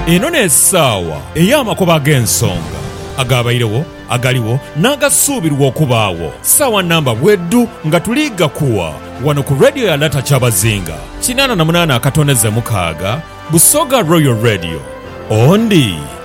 Eno n'esaawa ey'amakubo ag'ensonga, agaabairegho, agaligho, n'agasuubirwa okubaagho. Saawa namba bwedhu nga tuli ghakuwa ghano ku Radio ya Lata Kyabazinga kinaana na munaana akatondeze mukaaga, Busoga Royal Radio. Ondi.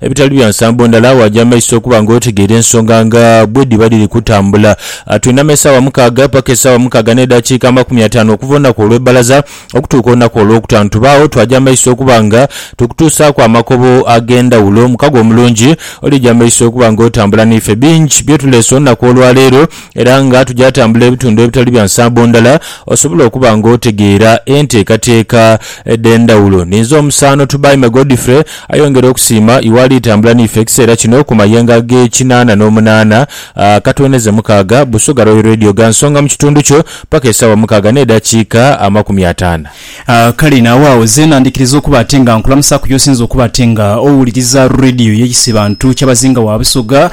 Ebitali bya nsambo ndala, waaja amaiso okuba nga otegeera ensonga nga bwe dhiba dhiri kutambula. Twinama esaawa mukaaga paka esaawa mukaaga n'edhakiika amakumi ataanu okuva olunaku olw'ebbalaza okutuuka olunaku olwokutaanu. Tubaagho twaja amaiso okuba nga tukutuusaaku amakobo ag'endhawulo. Mukago omulungi, olija amaiso okuba nga otambula n'ife. Bingi bye tuleese olunaku olwaleero. Era nga tugya tambula ebitundu ebitali bya nsambo ndala, osobola okuba nga otegeera enteekateeka edh'endhawulo. Ninze omusaano Tubaime Godfrey ayongere okusiima iwe ali tambula n'ife ekiseera kino ku mayenga g'ekinaana n'omunaana katweneze mukaaga, Busoga Royal Radio gha nsonga mu kitundu kyo paka esaawa mukaaga n'edhakiika amakumi ataana. Kale nawe agho zeena ndhikiriza okuba ate nga nkulamusaaku y'osinze okuba ate nga owuliriza Radio y'ekisibantu ky'abazinga wa Busoga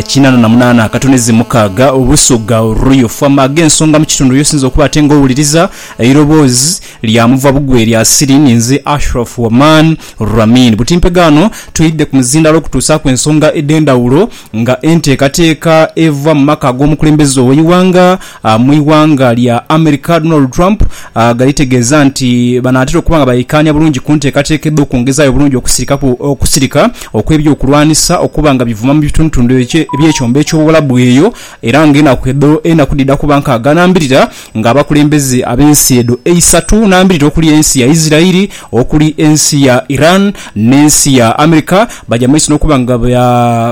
kinaana na munaana akatoneze mukaaga Busoga Royal Fm. Ag'ensonga mu kitundu y'osinze okuba ate nga owuliriza eiroboozi lya muva bugwe erya Siri ni nze Ashraf Waman Ramin. Buti mpega ghano twidhidhe ku muzindaalo okutuusaaku ensonga edh'endhawulo nga enteekateeka eva mu maka ag'omukulembeze ow'eighanga Amwighanga lya America Donald Trump ghalitegeza nti banaatera okuba nga baikaanya bulungi kunteekateeka edhokungezaayo obulungi okusirikaku okusirika okwebyokulwanisa okuba nga bivuma mubitundutundu ebyekyombo ekyobuwalabu eyo era nga enaku edho enaku dhidha kuba nkaaga nambirira nga abakulembeze abensi edho eisatu nambirira okuli ensi ya Israel okuli ensi ya Iran nensi ya America baja mumaiso nokuba nga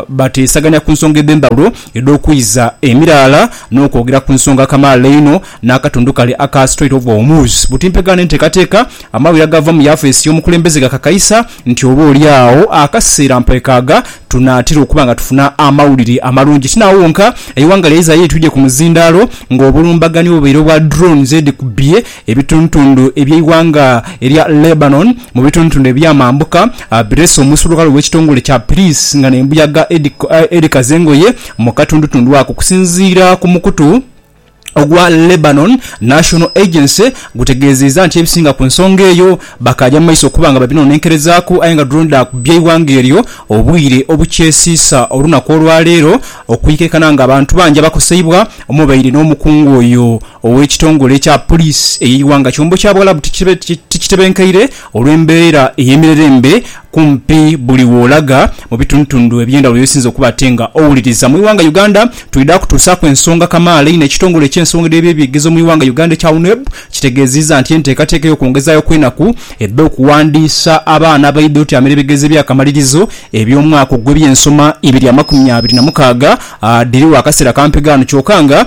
bateesaganya kunsonga edhendhawulo edh'okwiza emiraala n'okwogera ku nsonga kamaala einho n'akatundu kale aka Strait of Hormuz. Butimpegana n'enteekateeka, amawulire agava mu yafeesi y'omukulembeze gakakaisa nti oba oli agho akaseera mpwekaaga tunaatera okuba nga tufuna amawulire amalungi. Ti n'agho wonka, eighanga lya Israel litwidhie ku muzindaalo ng'obulumbaganyi obubaire obwa drones edhikubye Ebitundutundu eby'eighanga erya Lebanon mu bitundutundu eby'amambuka birese omuisulughala ow'ekitongole kya Pulisi nga n'embuyaga edhikaza engoye mu katundutundu ako. Okusinziira ku mukutu ogwa Lebanon National Agency gutegeezezza nti ebisinga ku nsonga eyo bakaaja mu maiso okuba nga babinonenkerezaaku aye nga drone dhaakubye eighanga eryo obwire obukyesiisa olunaku olwaleero okuikaikana ng'abantu bangi abakoseibwa omwabaire n'omukungu oyo Ow'ekitongole kya Poliisi ey'eighanga kyombo kya Buwalabu tikitebenkeire olw'embeera ey'emirerembe kumpi buli w'olaga mu bitundutundu eby'endhawulo y'osinze okuba ate nga owuliriza. Mu ighanga Uganda, twidha kutuusaaku ensonga kamaala einho ekitongole eky'ensonga edh'ebyebyegezo mu ighanga Uganda ekya UNEB kitegeeziiza nti enteekateeka ey'okwongezaayo kw'enaku edh'okuwandiisa abaana abaidha otyamira ebigezo eby'akamalirizo eby'omwaka ogw'ebyensoma ibiri amakumi abiri na mukaaga dhiriwo akaseera kampi ghano kyoka nga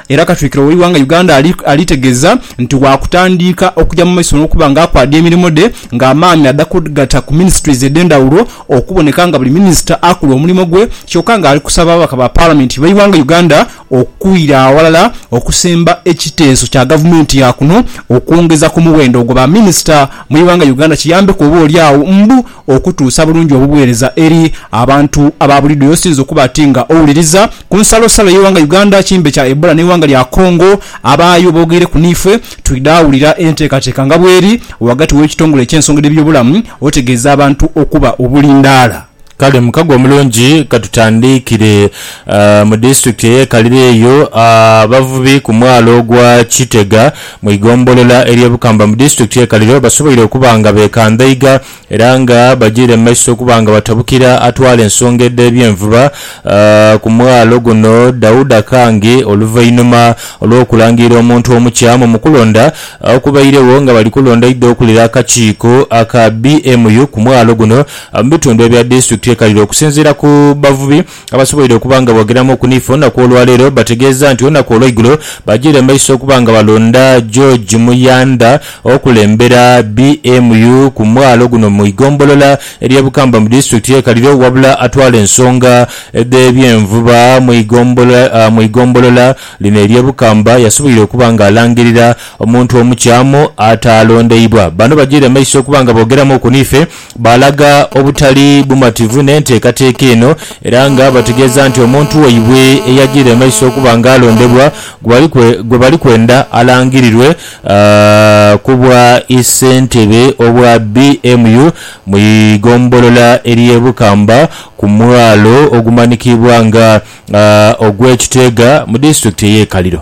Era Katwikiro w'eighanga Uganda ali ali tegeza nti waakutandiika okuja mu maiso n'okuba nga akwaadha emirimo dhe nga amaani adha kugata ku ministries edhendhawulo okuboneka nga buli minister akola omulimo gwe kyoka nga ali kusaba ababaka ba parliament b'eighanga Uganda okwira awalala okusemba ekiteeso kya gavumenti ya kuno okwongeza ku muwendo gwa ba minister mu eighanga Uganda kiyambeku oba oli agho mbu Okutuusa bulungi obuweereza eri abantu aba buliidho y'osinze okuba ati nga owuliriza. Ku nsalosalo y'eighanga Uganda, kimbe kya Ebola n'eighanga lya Congo, abaayo boogeireku niifwe twidha awulira enteekateeka nga bweri ghagati w'ekitongole eky'ensonga edh'ebyobulamu otegeeza abantu okuba obulindaala. Kale mukago omulungi katutandiikire mu disitulikiti ey'e Kalira eyo abavubi ku mwalo gwa Kitega Mu igombolola ery'e Bukamba mu disitulikiti y'e Kaliro basoboire okuba nga beekandhaiga era nga bajiire mu maiso okuba nga batabukira atwala ensonga edh'ebyenvuba ku mwalo guno Dauda Kangi oluvainhuma olw'okulangirira omuntu omukya mu mukulonda okubairegho nga bali kulonda aidha okulira akakiiko aka BMU ku mwalo guno mu bitundu ebya disitulikiti y'e Kaliro. Okusinziira ku bavubi abasoboire okuba nga boogeramu ku NIFA olunaku olwaleero bategeeza nti olunaku olweigulo bajiire mu maiso okuba nga balonda George Muyandha okulembera BMU ku mwalo guno mu igombolola erye Bukamba mu disitulikiti ye Kaliro wabula atwala ensonga dh'ebyenvuba mu igombolola lino erye Bukamba yasoboire okuba nga alangirira omuntu omukyamu ataalondeibwa. Bano bajiire mu maiso okuba nga boogeramu ku NIFA. Baalaga obutali bumativu n'enteekateeka eno era nga bategeeza nti omuntu waibwe eyajiire emaiso okuba nga alondebwa gwe bali kwenda alangirirwe ku bwa ssentebe obwa BMU mu igombolola ery'e Bukamba ku mwalo ogumanhikiibwa nga ogw'e Kiteega mu disitulikiti ey'e Kaliro.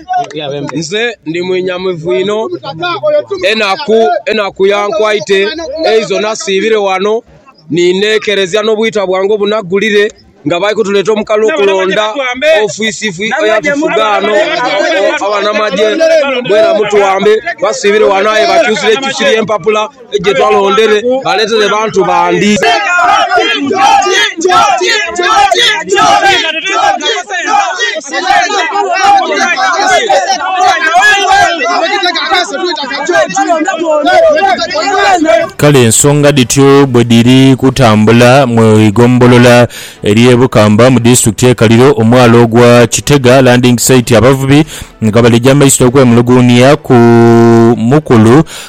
Nze ndi mwenhamivu inho, enaku enaku yankwaite eizo nasiibire ghano ni neekeresia n'obwita bwange obunaggulire nga bali kutuleeta omukali okulonda ofiisifi eyatufuga ghano abanamagye. Mwena mutuwambe, basiibire ghano aye bakyusire kyusire empapula. Kale ensonga dhityo bwe dhiri kutambula mu igombolola ery'e Bukamba mu disitulikiti y'e Kaliro, omwala ogwa Kitega Landing Site, abavubi nga baleja amaiso okwemuluguunia ku mukulu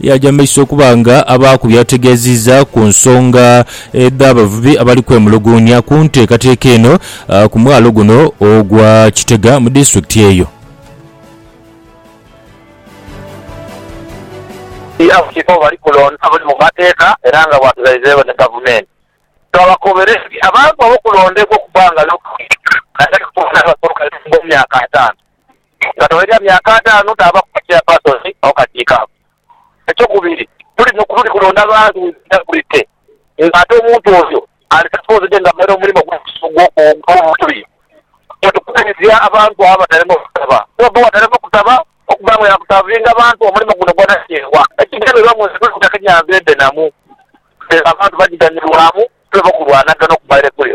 Yaaja mu maiso okuba nga aba ku by'ategeezizza ku nsonga edh'abavubi abali kwemuluguunya ku nteekateeka eno ku mwalo guno ogwa Kitega mu disitulikiti eyo. Abakiiko bali kulonda abali mu mateeka era nga bwatughaidheegho ni Gavumenti, twabakoberedde abantu abo okulondebwa okubangalu naddala okubangalu abasoka mu myaka ataanu. nga tugherera myaka ataanu taava ku bukyapasoni awo kasiika ako. Ekyokubiri, tuli kulonda bantu we twidha kulite, ng'ate omuntu oyo ali sapoozide nga amaire omulimo ogw'obutubi. Nga tukubirizia abantu abo abatalema okusaba, Bobi watalema kusaba okuba nga yaakusaavinga abantu omulimo guno gwa nakyewa. Ekigendererwa mu nsi tuli kutaka enyanza endhenamu, ela abantu bagiganhirwamu, tuleme okulwanagana okuva ere kule.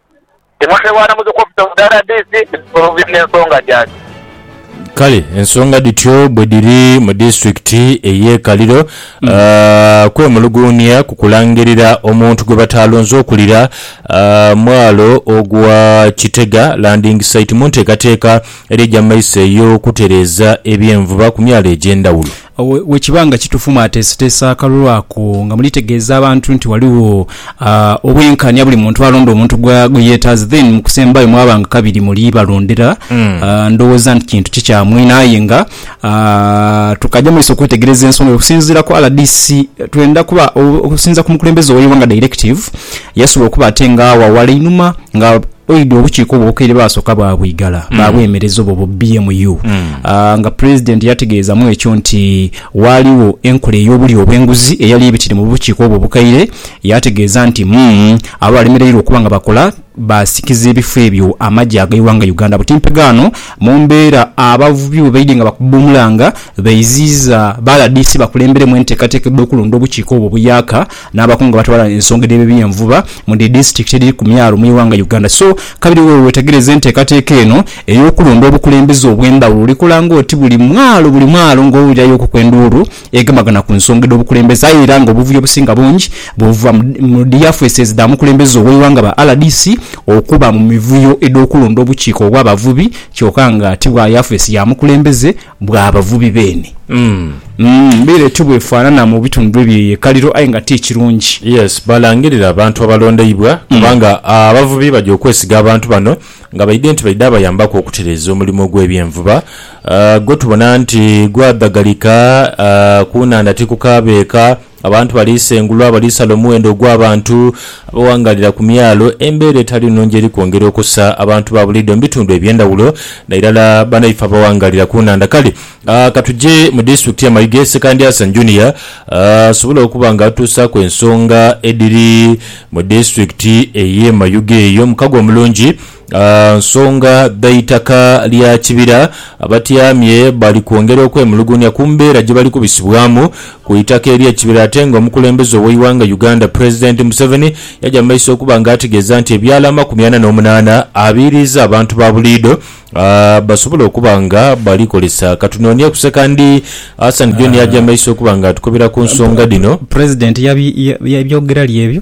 Timothy Bwanamuzi ku ofisi ofu rdc mu kusolvinga ensonga gyaki. Kale ensonga dhityo bwe dhiri mu disitulikiti ey'e Kaliro. Kwemuluguunia ku kulangirira omuntu gwe bataalonze okulira mwalo ogwa Kitega Landing Site mu nteekateeka eri eja mu maiso ey'okutereeza eby'envuba ku myalo egy'endhawulo. Bwe kiba nga kituufu mwateeseteese akalulu ako nga mulitegeeza abantu nti ghaligho obwenkanya buli muntu alonde omuntu gwe yeetaaze then mu kusembayo mwaba nga kabiri muli balondera, ndhowooza nti kintu kikyamwine aye nga tukaja mu maiso okwetegereza ensonga eyo. Okusinziira ku rdc twendha kuba, okusinziira ku mukulembeze ow'eighanga Directive yasobola okuba ate nga agho aghala einhuma nga Oidhi obukiiko obwokeire baasooka baabwigala baabwemereza obwo bu BMU nga Pulezidenti yategeezamu ekyo nti waaligho enkola ey'obulyo obw'enguzi eyali ebitire mu bukiiko obwo obukaire. Yaategeeza nti mumm abo abalemereirwa okuba nga bakola baasikiza ebifo ebyo amagye ag'eighanga Uganda buti mpegaano mu mbeera abavubi bwe baidhye nga bakuba omulanga baiziiza ba rdc bakulemberemu enteekateeka edh'okulonda obukiiko obwo buyaaka N'abakungu abatwala ensonga edh'ebibyenvuba mu dhi disitikiti edhiri ku myalo mu ighanga Uganda so kabiri wewe wetegereze enteekateeka eno ey'okulonda obukulembeze obw'endhawulo olikola ng'oti buli mwalo buli mwalo ng'owulirayo okuku enduulu egemagana ku nsonga edh'obukulembeze aye era ng'obuvuyo obusinga bungi buva mu dhi yafeeses dha mukulembeze ow'eighanga ba rdc okuba mu mivuyo edh'okulonda obukiiko obw'abavubi kyoka nga ti bwa yafeesi ya mukulembeze bwa bavubi beene. Umm bweire tibwefaanana mu bitundhu eby'eyeekaliro aye nga ti kirungi. Yes, balangirire abantu abalondeibwa kubanga abavubi baja okwesiga abantu bano nga baidhe nti baidha abayambaku okutereeza omulimu ogw'ebyenvuba gwe tubona nti gwadhagalika ku nhandha ti ku kaabeeka. Abantu balisengulwa, balisala omuwendo ogw'abantu abawangaalira ku myalo. Embeera etali nnungi eri kwongera okusa abantu ba buliido mu bitundu eby'endhawulo nairala banaife abawangaalira ku nhandha. Kale ka tuje mu disitulikiti ya Mayuge, Ssekandyasa Junior asobole okuba nga atuusaaku ensonga edhiri mu disitulikiti ey'e Mayuge eyo. Mukago omulungi. nsonga dha itaka lya kibira. Abatyamye bali kwongera okwemulugunya ku mbeera gye bali kubisibwamu ku itaka ery'ekibira ate nga omukulembeze ow'eighanga Uganda Pulezidenti Museveni yaja mu maiso okuba nga ategeeza nti ebyalo amakumi ana n'omunaana abiiriiza abantu ba buliidho basobole okuba nga balikozesa Katunoonie kusekandi Hassan John yaja mu maiso okuba nga atukubira ku nsonga dhino. Pulezidenti yabyogerali ebyo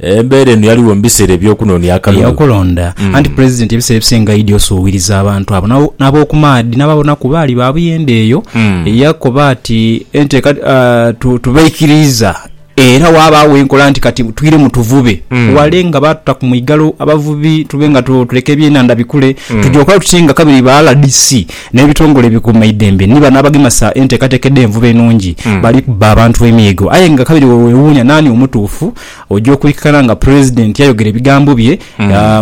Embeera eno yaligho mu biseera eby'okunoonia akalulu. Eyakulonda. Anti Pulezidenti ebiseera ebisinga aidhi osuubiriza abantu abo n'ab'okumaadhi n'ababona ku baali ba buyende eyo. Yakoba ati, Enteeka tubaikiriiza era waabaawo enkola nti kati twiremu tuvube wale nga baatuta ku mwigalo abavubi tube nga tuleka ebyenhandha bikule. Twidhi okola tuti nga kabiri ba rdc. N'ebitongole ebikuuma eidembe ni bano abagemesa enteekateeka edh'envuba enungi bali kubba abantu emiigo. Aye nga kabiri wewewuunya naani omutuufu, oja okwikakana nga Pulezidenti yayogera ebigambo bye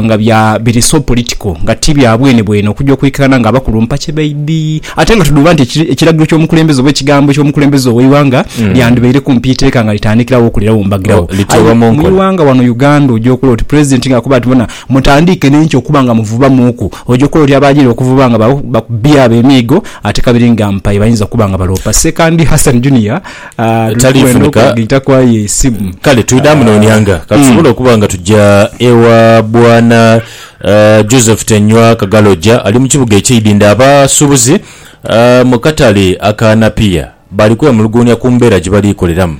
nga bya biri so political nga ti bya bwenebwene okuja okwikakana nga abakulumpa kye baidhi. Ate nga tudhuuba nti ekiragiro ky'omukulembeze oba ekigambo ky'omukulembeze ow'eighanga lyandibaire kumpi iteeka nga litandikirawo okulirawo mbagirawo. Aye mu ighanga wano Uganda oja okulola oti Pulezidenti ng'akoba ati bona Mutandiike n'enkya okuba nga muvubamuuku. Oja okola oti abaajira okuvuba nga bakubbi abo emiigo ate kabiri nga mpaye bayinza okuba nga baloopa. Ssekandi Hassan Junior tali kwenda Taliifunika. okwegita kwa ye isimu. Kale twidha munooneanga ka tusobole okuba nga tuja ewa Bwana eh, Joseph Tenywa Kagaloja ali mu kibuga eky'e Idindho. Abasuubuzi eh, mu katale aka Napier. Bali kwemuluguunia ku mbeera gye bali koleramu,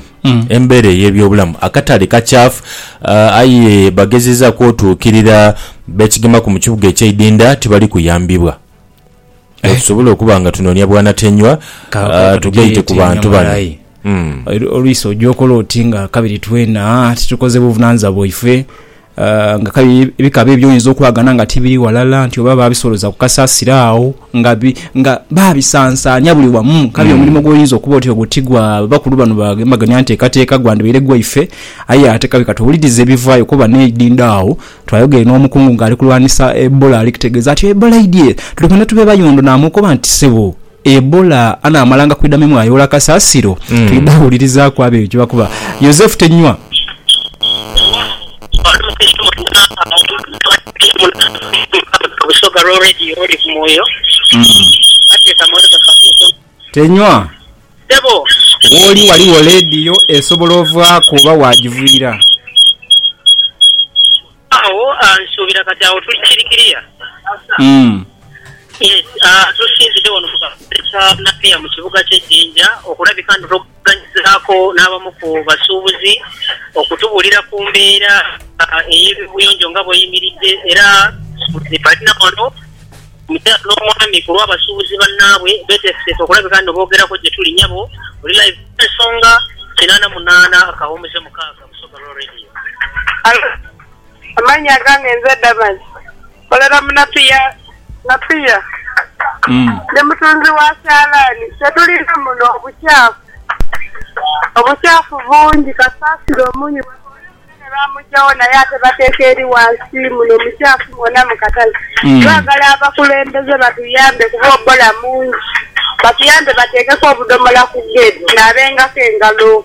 embeera ey'ebyobulamu akatali kakyafu aye bagezezaaku otuukirira beesigamaku mu kibuga eky'eidinda tibali kuyambibwa. Leka tusobole okuba nga tunoonia bwanatenywa tugaite ku bantu bano. Oluisi oja okola oti nga kabiri twena titukoze buvunaanyizibwa bwaife? Ah, nga kale bika bye by'oyinza okwagana nga tibiri ghalala, nti oba baabisooloza ku kasasiro agho nga bi, nga baabisansaania buli wamu. Kale omulimo gw'oyinza okuba oti ogwo ti gwa bakulu bano ba Gembagania Nteekateeka, gwandibaire gwaife. Aye ate kabe ka tuwulirize ebivaayo kuba n'eidhindho agho twayogere n'omukungu ng'ali kulwanisa Ebola ali kutegeeza ati, Ebola eidhye, tuli kwenda tube bayondo. Naamukoba nti, Ssebo, Ebola anaamalanga kwidha mimwa ayoola kasaasiro? Twidha wulirizaku abo ebyo kye bakoba. Yosefu Tenywa. Oli Mukristo mwenna awanikibwa mu Lukiiko lwa Busoga lwa Radio Olive Mwoyo bateeka mu Olive Kaguuga omukono. Tenywa. Ssebo. Wooli waliwo leediyo esobola ovaaku oba waagiviira? Agho nsuubira kati agho tuli kiri kiriya. Yes, tusinzidde wano mu katale ka Napier mu kibuga kye Jinja okulabika nti twogeraganyizaako n'abamu ku basuubuzi okutubuulira ku mbeera ey'ebibuyonjo nga bw'eyimiridde era nti balina wano omukyala n'omwami ku lw'abasuubuzi bannaabwe beeteeseteese okulabika nti boogerako gye tuli. Nyabo, oli live ku Ensonga, kinaana munaana kawummuze mukaaga. Alo, amannya gange nze Damazi. Nkolera mu Napier, Napier. Ndi mutunzi wa kyalaani. Kye tulina muno obukyafu. Obukyafu bungi kasasiro omuumi we oli omunene baamuggyawo naye ate bateeka eri wansi muno mukyafu mwona mu katale. Twagala abakulembeze batuyambe kuba obbola mungi. Batuyambe bateekeku obudhomola ku geeti tunaabengako engalo.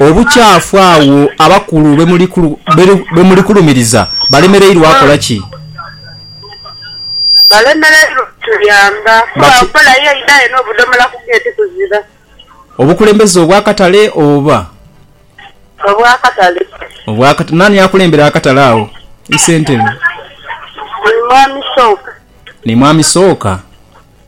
Obukyafu agho abakulu bwe mulikulumiriza balemereirwa akola ki? Balemereirwa kutuyamba kuba nkola ye idhayo n'obudhomola ku geeti kuzira. Obukulembeze obw'akatale oba? Obw'akatale. Obw'akatale. Naani akulembera akatale agho? Isentebe. Ni Mwami Sooka. Ni Mwami Sooka.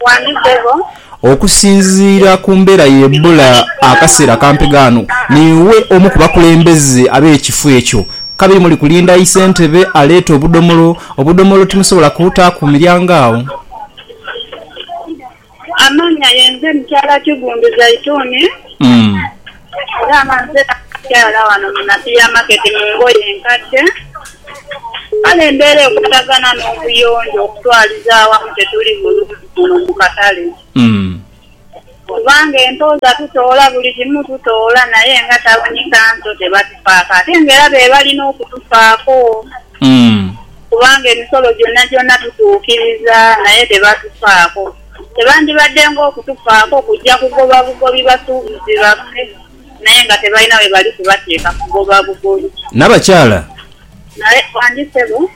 Wani sebo. Okusinziira ku mbeera y'ebula akaseera akampi ghano, niiwe omu ku bakulembeze ab'ekifo ekyo. Kabiri muli kulinda aise entebe aleete obudomolo. Obudomolo timusobola kubuta ku miryango agho? Amanya yenze mukyala Kiggundu Zaituni. Dama nze nakyala ghano mu Napier Market mu ngoye enkadde. Kale embeera ekwataganha n'obuyonjo okutwaliza aghamu tetuli bulungi muno mu katale. Kubanga entooza tutoola, buli kimu tutoola naye nga tawuni kanso tebatufaako ate nga era be bali n'okutufaako kubanga emisolo gyonagyona tutuukiriza naye tebatufaako. Tebandibadde ng'okutufaako kuja kugoba bugobi basuubuzi baffe, naye nga tebalina we bali kubateeka kugoba bugobi. Nabakyala. Naye bandi ssebo.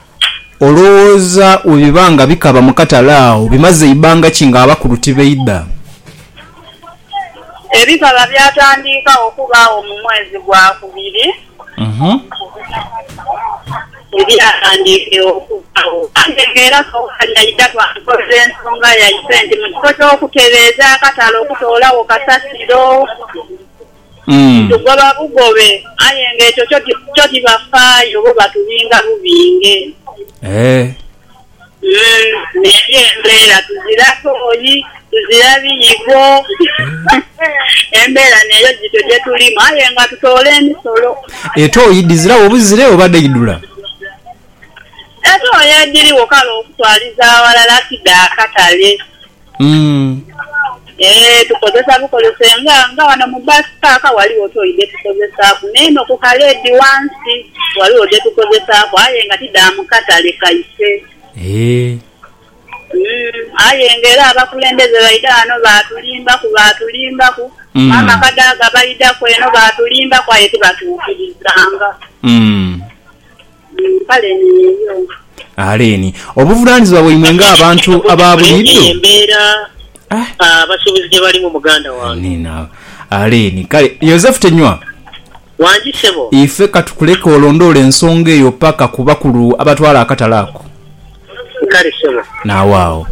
Olowooza bwe biba nga bikaba mu katale agho bimaze ibanga ki ng'abakulu tibaidha? Ebikaba byatandiika okubaagho mu mwezi gwa kubiri. Ebighandiike okubagho. Ghange era Sowali aidha lwankolera ensonga yaife nti mu kifo ky'okutereeza akatale okutoolawo kasasiro, tugoba bugobe, aye ng'ekyo kyo tibafaayo, bo batubinga bubinge. Umm eyo embeera tuzira tooyi, tuzira biyigo embeera neeyo gityo gyetulimu aye nga tutoola emisolo. Etooyi dhiziragho buzire oba dhaidhula? Etooyi edhirigho kale okutwaliza aghalala ti dha katale. Eeh tukozesa bukozese nga nga wano mu bus park waliwo toyi dhetukozesaku neno ku ka lady wansi waliwo dhetukozesaku aye nga ti dha mukatale kaife aye nga era abakulembeze baidha wano batulimbaku batulimbaku maama kadaga baidhaku eno batulimbaku aye tibatukirizanga. Aleeni, obuvunaanizibwa bwaimwe ng'abantu aba buliidho. Amiina. Aleeni. Kale, Yosefu Tenywa, ife ka tukuleke olondoole ensonga eyo paka ku bakulu abatwala akatale ako. Nkali sebo. Nawe agho.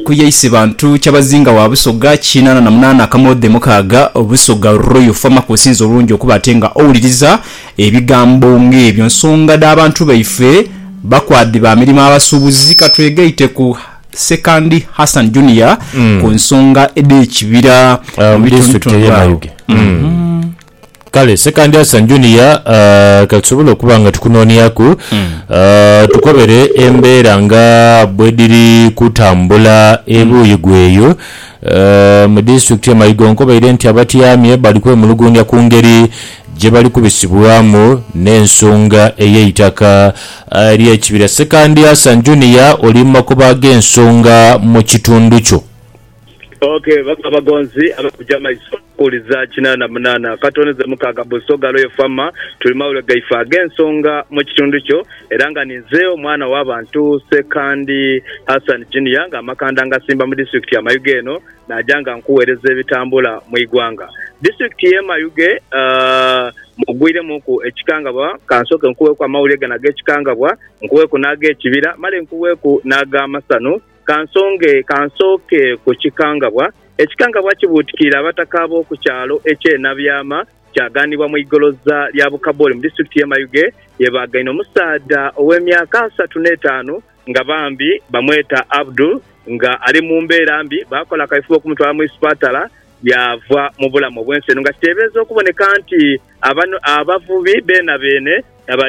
Ku Yaisi Bantu, Kyabazinga wa Busoga, kinaana na munaana akamoodhe mukaaga, Busoga Royal Farmer kw'osinze obulungi okuba ate nga owuliriza ebigambo ng'ebyo. Nsonga dha bantu baife, bakwadhi ba mirimo abasuubuzi. Ka twegaite ku Ssekandi Hassan Junior ku nsonga edh'ekibira mu bitundutundu agho. Kale Sekandi Asan Junior, ah, ka tusobole okuba nga tukunooniaku, ah, tukobere embeera nga bwedhiri kutambula ebuuyi gweyo, ah, mu disitulikiti ye Maigo nkobaire nti abatyamye bali kwemuluguunhia ku ngeri gyebali kubisibwamu n'ensonga ey'eitaka ah, ly'ekibira. Sekandi Asan Junior oli mu makubo ag'ensonga mu kitundu kyo. Ok, babagonzi abakuja maiso. Kuuliza kinaana munaana akatoneza mukaaga buso galo yefama tuli mawulire gaife ag'ensonga mu kitundu kyo era nga ninze omwana wa bantu Ssekandi Hassan Junior nga amakanda ngasimba mu disitulikiti ya Mayuge eno naja nga nkuwereza ebitambula mu igwanga Disitulikiti ye Mayuge mugwiremuku ekikangabwa kansoke nkuweku amawulire gano ag'ekikangabwa nkuweku n'agekibira male nkuweku n'agamasanu Ka nsonge, ka nsooke ku kikangabwa. Ekikangabwa kibuutikiire abataka ab'oku kyalo eky'e Nabyama, kyaghanibwa mu igoloza lya Bukaboli mu disitulikiti y'e Mayuge ye baagaine omusaadha ow'emyaka asatu n'etaanu nga bambi bamweta Abdul nga ali mu mbeera mbi. Baakola akaifube okumutwala mu isipatala yaava mu bulamu obw'ensi eno nga kiteebereza okuboneka nti abavubi beenabeene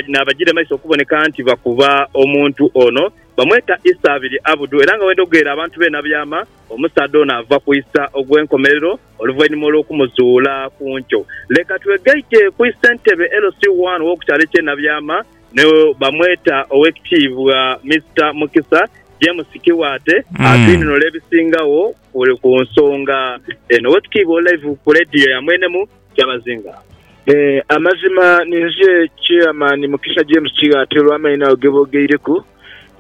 n'abagiire mu maiso okuboneka nti bakuba omuntu ono. Bamweta Isa abiri Abudu era nga bwendhogeera abantu beena byama, omusaadha ono ava ku Isa ogw'enkomerero oluvainhuma olw'okumuzuula ku nkyo. Leka twegaite ku Isentebe LC I w'oku kyalo eky'e Nabyama ni bamweta Owekitiibwa Mister Mukisa James Kiwaate atwinunule ebisingagho ku nsonga eno. Owekitiibwa oli live ku leediyo ya mwenemu. kyabazinga. Ee, amazima ni nze Chairman Mukisa James Kighaatta olw'amaino ago ge boogeireku.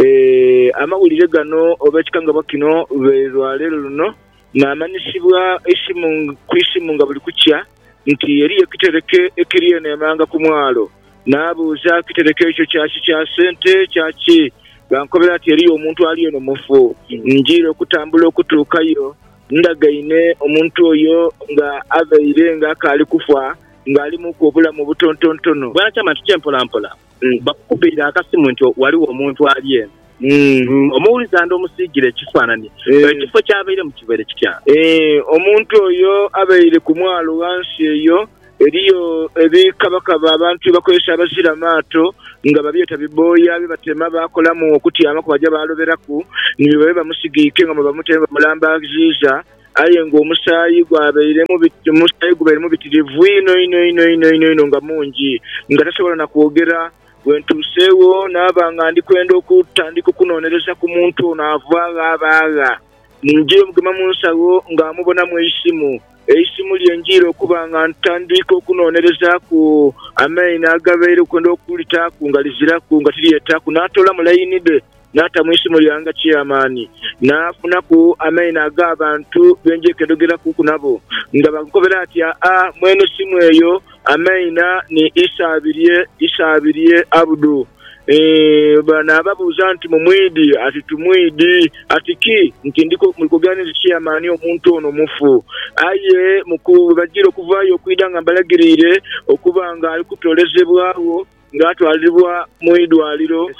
Ee, amawulire gano oba ekikangabwa kino lwe lwa leero luno naamanyisibwa eisimu ku isimu nga buli kukya nti eriyo ekitereke ekiri eno emanga ku mwalo. Naabuuza ekitereke ekyo kya ki, kya sente, kya ki? Baankobera nti eriyo omuntu ali eno mufu. Njiire okutambula okutuukayo. Ndagaine omuntu oyo nga avaire nga akaali kufa, nga alimuku obulamu obutontontono. Bwanakyama nti, Kye mpola mpola bakukubeire akasimu nti ghaligho omuntu ali eno. Omuwulize ande omusiigire ekifaanani. Ekifo ky'abairemu kibaire kitya? Omuntu oyo abaire ku mwalo ghansi eyo. Eriyo ebikabakaba abantu bye bakozesa abazira maato nga babyeta bibooya bye batema baakolamu okutyamaku baja baaloberaku ni bye babe bamusigiike nga mwe bamuta ni bwe bamulambaaziiza aye ng'omusaayi gwabairemu omusaayi gubairemu bitirivu inho inho inho inho inho inho nga mungi nga tasobola na kwogera. Bwe ntuuseegho naaba nga ndi kwenda okutandika okunoonereza ku muntu ono ava gha aba agha. Ninjiire omugema mu nsawo nga mmubonamu eisimu. Eisimu lye njiire okuba nga ntandika okunoonerezaaku amaino agabaire kwenda okulitaaku nga liziraku, nga tilyetaaku. Naatoolamu laini dhe naata mu isimu lyange nga Chairman. Naafunaku amaino ag'abantu be njekedogerakuku nabo nga bankobera ati, Aa, mwene simu eyo, amaina ni Isaabirye, Isaabirye Abdu. Eeh, naababuuza nti, Mumwidhi? Ati, Timwidhi. Ati, Ki? Nti, Ndi kugambye nti Siyamani omuntu ono mufu. Aye bwe bajiire okuvaayo okwidha nga mbalagiriire okuba nga ali kutoolezebwagho nga atwalibwa mu idwaliro,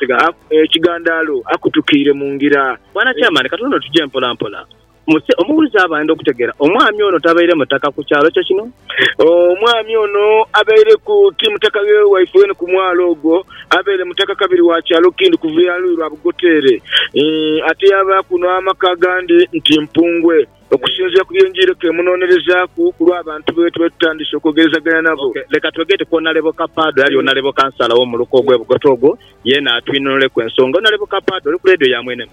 ekigandaalo akutukiire mu ngira. Bwana Chairman, katuuno tuje mpola mpola. Muse omuwulize abandi okutegera. Omwami ono tabaire mutaka ku kyalo kye kino. Omwami ono abaireku ti mutaka ghe waife wene ku mwalo ogwo. Abaire mutaka kabiri wa kyalo kindi kuva ya luyi lwa Bugoteere. Ate yabaaku n'amaka agandi nti Mpungwe, okusinziira ku bye njiereku emunonerezaaku ku lwa bantu be twetutandise okwogerezaganya nabo. Leka twegere ku Onalebo Kapaado eyali Onalebo Kansala wo muluka ogwe Bugote ogwo, yeena atwinhonholeku ensonga. Onalebo Kapaado, oli ku leediyo ya mwene mu?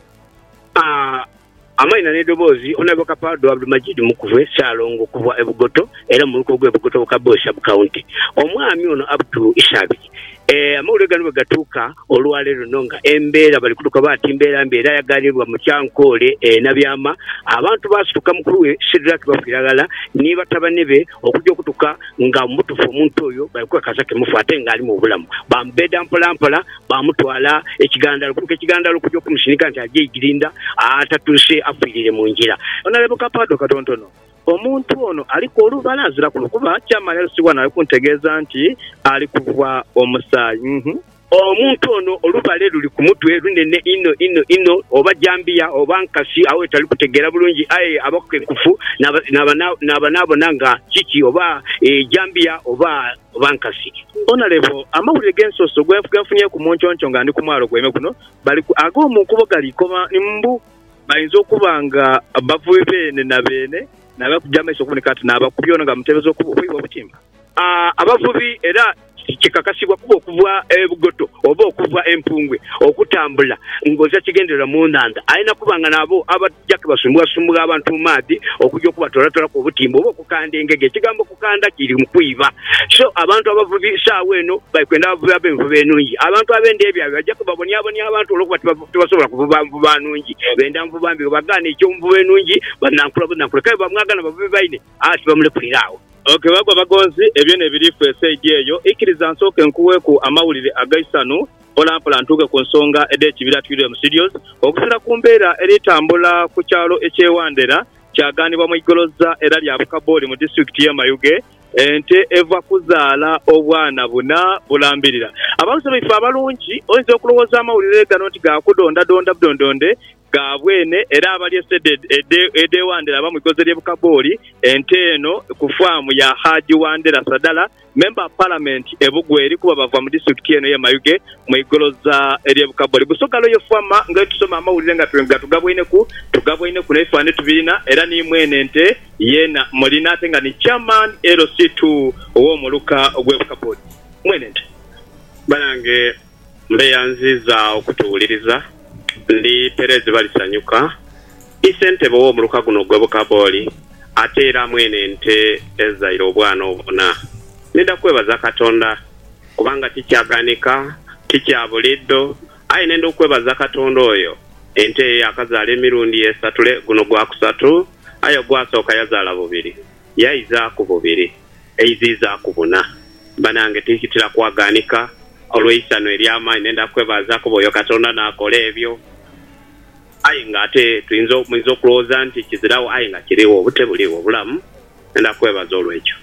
Amaina n'edoboozi, Onaibo Kapardo Abdumajid Mukubwe Ssalongo okuvwa e Bugoto era mumuluka ogwe Bugoto mu Kaboyo Sub County. Omwami ono Abdu Ishabiri ee amawulire gano bwegatuuka olwaleero luno nga embeera bali kutuka oba ati mbeera mbi era ayaganirwa mu Kyankoole e Nabyama abantu basituka mukulu we Shidrak Bafiira ghala ni batabane be okuja okutuka nga mubutufu omuntu oyo bali kukakasa ke mufu ate nga alimu obulamu bamubeda mpola mpola Baamutwala e Kigandalo. Okutuuka e Kigandalo okugya okumusinika nti aje Igirindha atatuuse afiirire mu ngira. Onalebo Kapaado katontono, Omuntu ono aliku olubala aziraku lukuba kyamala yalosibwa nawe kuntegeeza nti ali kuva omusaayi. Omuntu ono olubale luli ku mutwe lunene inho inho inho, oba jambiya oba nkasi agho wetali kutegeera bulungi aye abakenkufu naaba naabona nga kiki oba jambiya oba. oba nkasi. Onalebo, amawulire g'ensoso gwenfunyeku munconco nga ndi ku mwalo gw'eime guno bali ku ago mu nkuubo gali koma mbu bainza okuba nga bavubi beene na beene n'aba ku gy'amaiso okuboneka ati n'abakubi ono nga mutebeza okuibwa obutimba. A Abavubi era kikakasibwa kubo okuva e Bugoto oba okuva e Mpungwe okutambula ng'oza kigendererwa mu nhandha alina kuba nga n'abo aba. Kija kubasumbugha-sumbugha abantu mu maadhi okuja okubatoolatoolaku obutimba oba okukanda engege. Ekigambo kukanda kiri mu kwiba. So, abantu abavubi saagho eno bali kwenda abavubi ab'envuba enungi. Abantu ab'enda ebyabwe baja kubabonyabonya abantu olw'okuba tibasobola kuvuba nvuba nungi. Benda nvuba mbi. Bwebagaana ekyo nvuba enungi, banankula bunankula. Kale bwebamwagana bavubi baine, aaa tibamulekulira agho. Ok, bagwa bagonzi, ebyo n'ebiri ffe esaidi eyo. Ikiriza nsooke nkugheeku amawulire ag'eisanhu. mpolampola ntuuke ku nsonga edh'ekibira Twiremu Studios. Okusinzira ku mbeera eri tambula ku kyalo eky'e Wandera, kyagaanibwa mu igoloza era lya Bukaboli mu disitulikiti y'e Mayuge, ente eva kuzaala obwana buna bulambirira. Abawuze baife abalungi, oyinza okulowooza amawulire gano nti ga kudondadonda budondonde ga bwene era abalya esede edhe Wandera aba mwigoze lye Bukaboli ente eno ku faamu ya Haji Wandera Sadala member of parliament e Bugweri kuba bava mu district eno ye Mayuge mwigoloza elye Bukaboli Busoga Royal Farmer nga bwetusoma amawulire nga gatugabwaineku tugabwaineku ne bifanane tubirina era ni mwene ente yena mulina ate nga ni chairman LC2 owo muluka gwe Bukaboli mwene ente banange. Mbeyanziiza okutuwuliriza, ndi pereezi Balisanyuka, i sentebe ow'omuluka guno ogw'e Bukabooli ate era mwene nte ezaire obwana obuna. Nidha kwebaza Katonda kubanga ti kyaghanika, ti kya buliidho, aye nenda okwebaza Katonda oyo ente ye yaakazaala emirundi esatule, guno gwa kusatu, aye ogwasooka yazaala bubiri. yaizaaku bubiri, eiziizaaku buna. Banange twikitira kwaghaanika olw'eisanhu ery'amaani ne ndha kwebazaaku oba oyo Katonda n'akola ebyo. Aye nga ate twinza, muinza okulowooza nti kiziragho aye nga kirigho, obute buligho, obulamu. Ne ndha kwebaza olw'ekyo.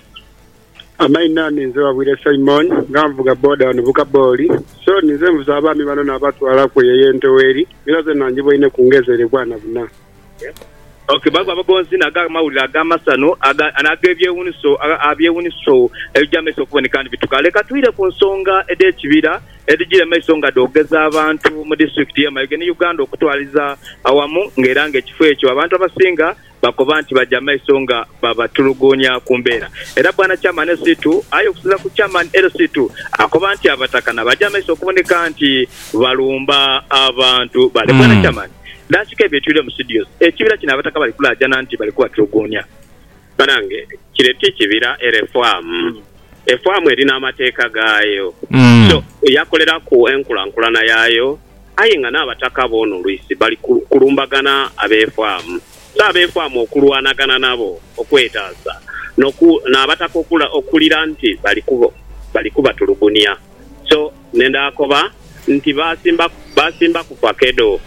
Amaina, ninze Wabwire Simon nga nvuga boda ghano mu Kaboli. So ninze nvuze abaami bano nabatwalaku eyo ey'e Ntoweri, era zeena njiboine ku ngezi ere bwana buna. Ok, baaku abagonzi n'ag'amawulire ag'amasanhu n'ag'ebyewuniso abyewuniso ebija mu maiso okuboneka nibituka. Leka twire ku nsonga edh'ekibira edhijira mu maiso nga dhoogeza abantu mu disitulikiti y'e Mayuge ni Uganda okutwaliza awamu nga era nga ekifo ekyo abantu abasinga bakoba nti baja mu maiso nga babatuluguunya ku mbeera era Bwana Chairman LC2 aye okusinzira ku Chairman LC2 akoba nti Abataka nabaja mu maiso okuboneka nti balumba abantu bale. Bwana Chairman. Naasika ebyetwire mu studios ekibira kino abataka bali kulaajana nti bali kubatuluguunia. Banange kire ti kibira era efaamu. Efaamu erina amateeka gaayo so yakoleraku enkulankulana yaayo aye nga n'abataka boona olwisi bali kulumbagana ab'efaamu. So ab'efaamu okulwanagana nabo okwetaasa n'abataka okuwulira nti bali kubatulugunia. So ne ndaakoba nti, Baasimba, baasimba ku fakedo.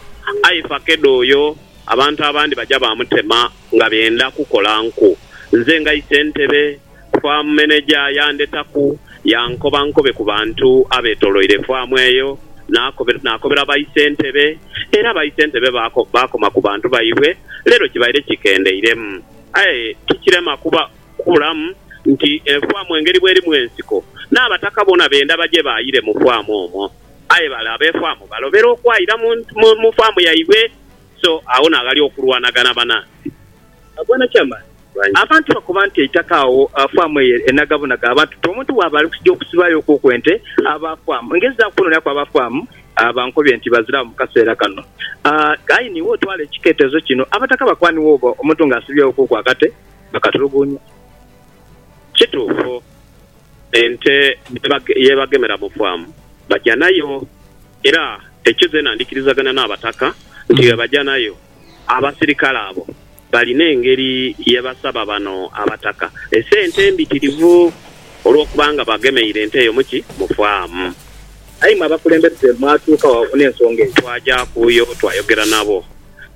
Aye fakedo oyo abantu abandi baja baamutema nga benda kukola nku. Nze nga isentebe, faamu meneja yandetaku yankoba nkobe ku bantu abeetoloire faamu eyo. Naakobe, naakobera baisentebe, era baisentebe baako, baakoma ku bantu baibwe. Leero kibaire kikendeiremu. Aye tikirema kuba Kubulamu nti enfaamu engeri bw'erimu ensiko, n'abataka bona benda baje baayire mu faamu omwo. Aye bale ab'efaamu balobera okwayira mu faamu yaibwe, so agho n'aghali okulwanagana banaansi. Bwana ky'amaani, abantu bakoba nti eitaka agho faamu eyo enagabunaga abantu nti omuntu bw'aba ali kuja okusibaayo okuku ente, aba faamu engenzi za kwonooneraku aba faamu. Bankobye nti baziragho mu kaseera kano. Aye n'iwe otwale ekiketezo kino, abataka bakuwa n'iwe oba omuntu ng'asibyeegho okuku akate. bakatulugunya. Kituufu ente ye bagemera mu faamu baja nayo era ekyo zeena ndikirizagana n'Abataka nti ye baja nayo. Abasirikale abo balina engeri ye basaba bano Abataka esente embitirivu olw'okuba nga bagemeire ente eyo mu ki? Mu faamu. Aye imwe abakulembeze mwatuuka wa n'ensonga eyo? Twaja kuyo twayogera nabo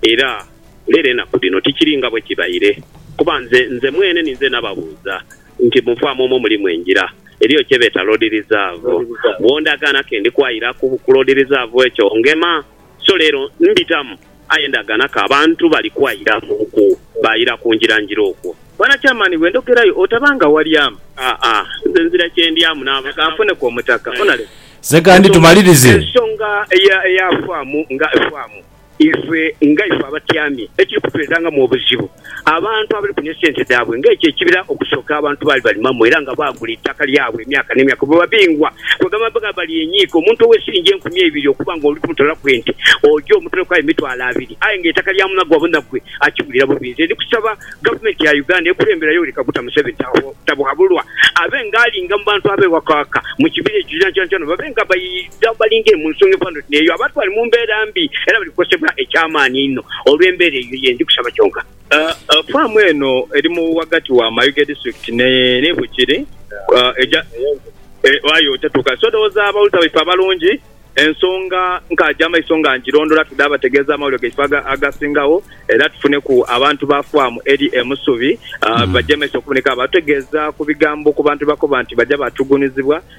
era. Leero enaku dhino tikiri nga bwe kibaire, kuba nze nze mwene ninze nababuuza nti, Mu faamu omwo mulimu engira, eriyo kye beeta Loodi Rizavu, bw'ondagaana ke ndi kwayira ku ku Loodi Rizavu ekyo ngema. So leero mbitamu, aye ndagaana ke abantu bali kwayira mu ku baayira ku ngira ngira okwo. Bwana Chairman, bwe ndhogerayo otaba nga walyamu. Aa, nze nzira kye ndyamu n'abo ka nfune ku omutaka. Onalemu. Sekandi, tumalirize. Ensonga eya eya faamu nga efaamu. Ife nga ife abatyamye, ekiri kutuleetangamu obuzibu, abantu abali kunia sente dhaabwe nga ekyo ekibira okusooka abantu baali balimamu era nga baagula eitaka lyabwe emyaka n'emyaka bwe babingwa kwegamba nga balyenyiika. Omuntu owesinja enkumi eibiri okuba nga oli kumutolaku ente, oja omutoleku aye mitwalo abiri aye nga eitaka lya munagwe abona gwe akiwulira bubi. Nze ndi kusaba Gavumenti ya Uganda ekulemberayo Yoweri Kaguta Museveni Tabuhabulwa abe nga alinga mu bantu abewakwaka mu kibira ekyo kyonakyona babe nga Dha balinge mu nsonga efanana oti n'eyo, abantu bali mu mbeera mbi era bali kukosebwa eky'amaani einho olw'embeera eyo. Ye ndi kusaba kyonka. Faamu eno eri mu ghagati wa Mayuge District ni Bukiri egya aye otatuuka. So ndhoghoza abawuliza baife abalungi ensonga nkaagya maiso nga ngirondhola tudhe abategeeza amawulire gaife agasingagho era tufuneku abantu ba faamu eri e Musubi bagye maiso okuboneka abatutegeeza ku bigambo ku bantu byebakoba nti baja batugunizibwa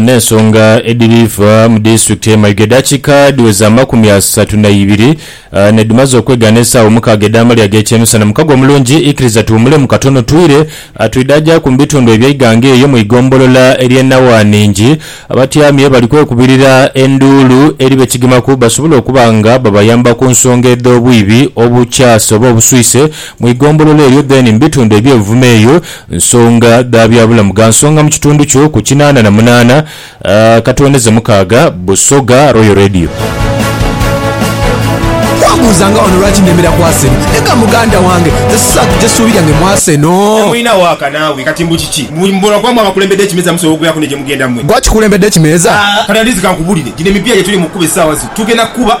n'ensonga edhiriva mu disitulikiti ye Mayiga. Edakika dhiweza amakumi asatu na ibiri nedhimaze okwegaana esaawa omukaaga edh'amalya ag'ekyemisana. Mukago omulungi, ikiriza tuwumulemu katono twire twidhaajaku mu bitundu eby'eighanga eyo mu igombolola erye Nawanhingi abatyamye bali kwekubirira enduulu eri bekigemaku basobole okuba nga babayamba ku nsonga edh'obwibi obukyase oba obuswise mu igombolola eryo then mu bitundu eby'e Buvuma eyo Nsonga dha byabulamu gha nsonga mu kitundu kyo ku kinaana na munaana katwoneze mukaaga Busoga Royal Radio. Bwambuuzanga wano lwaki nnemera ku Arsenal, ne nga muganda wange nze sisaako gye ssuubi lyange mu Arsenal. Temulina waaka naawe kati mbu kiki? Mbu mbona kuba mwe abakulembedde ekimeeza musobola okubeeraku ne gye mugenda mwe. Gwe akikulembedde ekimeeza? Kati at least kankubulire, gino emipiira gye tuli mu kukuba essaawa zino tugenda kukuba.